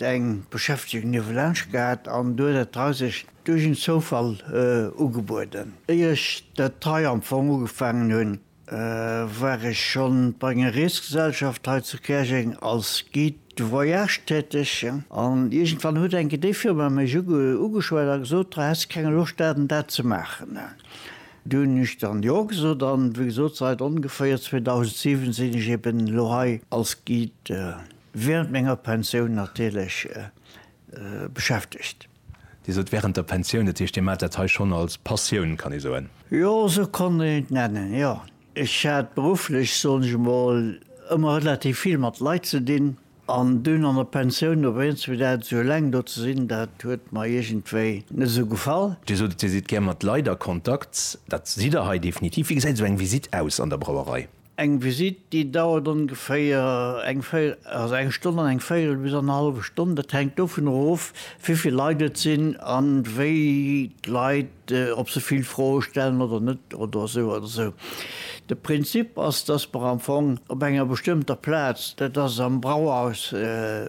eng Beschäftegung niewelaanscht gehat an du huet et hei sech duerch en Zoufall ugebueden. Éier ech dat hei am Fong ugefaangen hunn, war ech schonn bei enger Reesgesellschaft hei zu Käerjeng als Guide de voyage täteg an iergendwann huet enke déi Firma mech ugeschwat a gesot, ha häss de keng Loscht dat an dat ze maachen. Du hunn ech dann jo gesot an wéi gesot sait ongeféier 2007 sinn ech eben elo hei als Guide. Während menger Pensioun natierlech beschäftegt. Dir sot während der Pensioun, dat heescht Dir maacht dat hei schonn als Passioun, kann ee soen? Jo, esou konnt een et nennen, jo. Ech hat berufflech, soen ech emol, ëmmer relativ vill mat Leit ze dinn an dunn an der Pensioun op eens fir dat esou eleng do ze sinn, dat huet mer iergendwéi net esou gefall. Dir sot et, Dir sidd gär mat Leit a Kontakt, dat sidd Der hei definitiv. Wéi gesäit esou eng Visitt aus an der Brauerei? Eng Visitt, déi dauert ongeféier eng Stonn an eng Véierel bis annerhallwe Stonn. Dat hänkt dovunner of, wéi vill Leit et sinn an wéi d'Leit, ob se vill Froe stellen oder net oder esou oder esou. De Prinzip ass, dass mer am Fong op enger bestëmmter Plaz, dat ass am Brauhaus,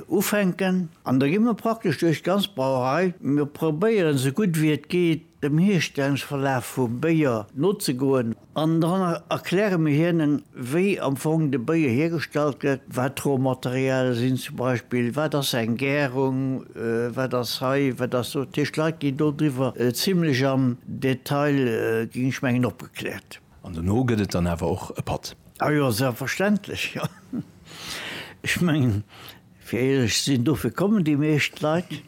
ufänken an da gi mer praktesch duerch d'ganz Brauerei. Mir probéieren, esou gutt wéi et geet, dem Hierstellungsverlaf vum Béier nozegoen. An dann erkläre mir hinnen, wéi am Fong de Béier hiergestallt gëtt, wat d'Rohmaterialie sinn zum Beispill, wat ass eng Gärung, wat ass hei, wat ass do. Dat heescht, d'Leit ginn dodriwwer zimlech am Detail, ginn ech mengen, opgekläert. An dono gëtt et dann awer och e Patt. Ah jo, selbstverständlech, jo. Ech mengen, fir éierlech ze sinn, dofir kommen déi meescht Leit.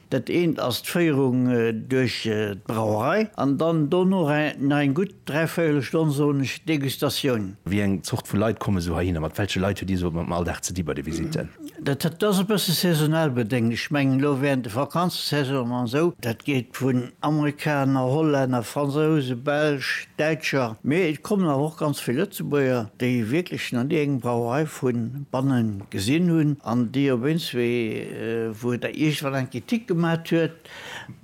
Dat eent ass d'Féierung duerch d'Brauerei an dann dono nach eng gutt dräivéierel Stonn, soen ech, Degustatioun. Wéi eng Zort vu Leit komme sou heihinner? Mat welche Leit huet Dir sou am Alldag ze di bei de Visitten? Dat ass e bësse saisonal bedéngt. Ech mengen elo während de Vakanzesaisonen an esou, dat geet vun Amerikaner, Hollänner, Fransouse, Belsch, Däitscher, mee et kommen awer och ganz vill Lëtzebuerger, déi wierklech nach ni eng Brauerei vu banne gesinn hunn an déi op eens wéi, wou Der iergendwann eng Kritik gemat huet,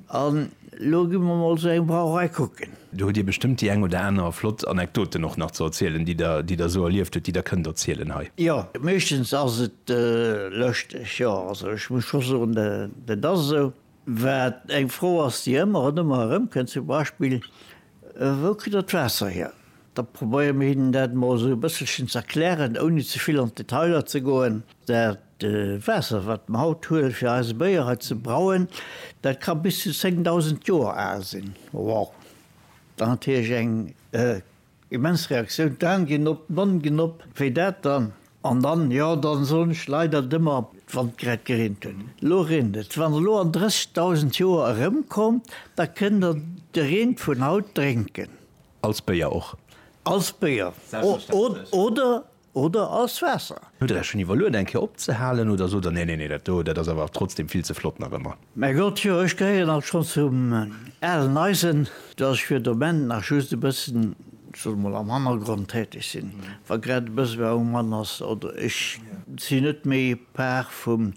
an elo gi mer emol esou eng Brauerei kucken. Do hutt Dir bestëmmt déi eng oder aner flott Anekdoten och nach ze erzielen, déi Der, déi Der esou erlieft hutt, déi Der kënnt erzielen hei. Jo, meeschtens ass et lëschteg, jo. Also ech muss scho soen, dat ass esou. Wat eng Fro ass, déi ëmmer an ëmmer erëmkënnt, zum Beispill, Wou kritt der d'Waasser hier? Da probéiere mir hinnen dat emol esou e bësselchen ze erklären, ouni ze vill an d'Detailer ze goen. Dat Waasser, wat mer haut huelen, fir eise Béier hei ze brauen, dat ka bis zu 10.000 Joer al sinn. Wow! Dat ass natierlech eng immens Reaktioun. D'Aan ginn op, d'Nonn ginn op. Wéi dat dann An dann, jo, dann soen ech leider dëmmer, wann et grad gereent huet, elo reent et. Wann elo an 30.000 Joer erëmkommt, da kënnt der de Reen vun haut drénken. Als Béier och. Als Béier oder, oder als Waasser. Hutt der Iech schonn iwwerluet eng Kéier opzehalen oder sot der, nee, nee, nee, dat do, dat ass awer trotzdem vill ze flott nach ëmmer? Mäi Gott, jo, ech gehéieren alt schonn zum alen Eisen, dass ech fir de Moment nach just e bëssen, ech soss emol, am Hannergrond täteg sinn, wa grad e Besoin um Mann ass oder ech sinn net méi Par vum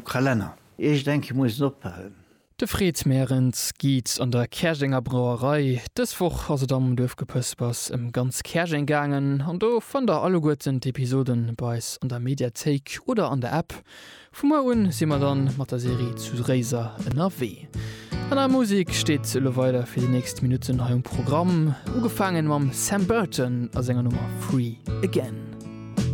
Kalenner. Iergend eng Kéier muss en ophalen. De Fred Merens geet an der Käerjenger Brauerei. Dës Woch ass et am Duerfgepëspers ëm ganz Käerjeng gaangen an do fënnt der alleguerten d'Episoden bei eis an der Mediathéik oder an der App. Vu muer un si mer dann mat der Serie zu Réiser ënnerwee. An der Musik steet elo weider fir déi nächst Minutten hei um Programm, ugefaangen mam Sam Burton a senger Nummer Free Again.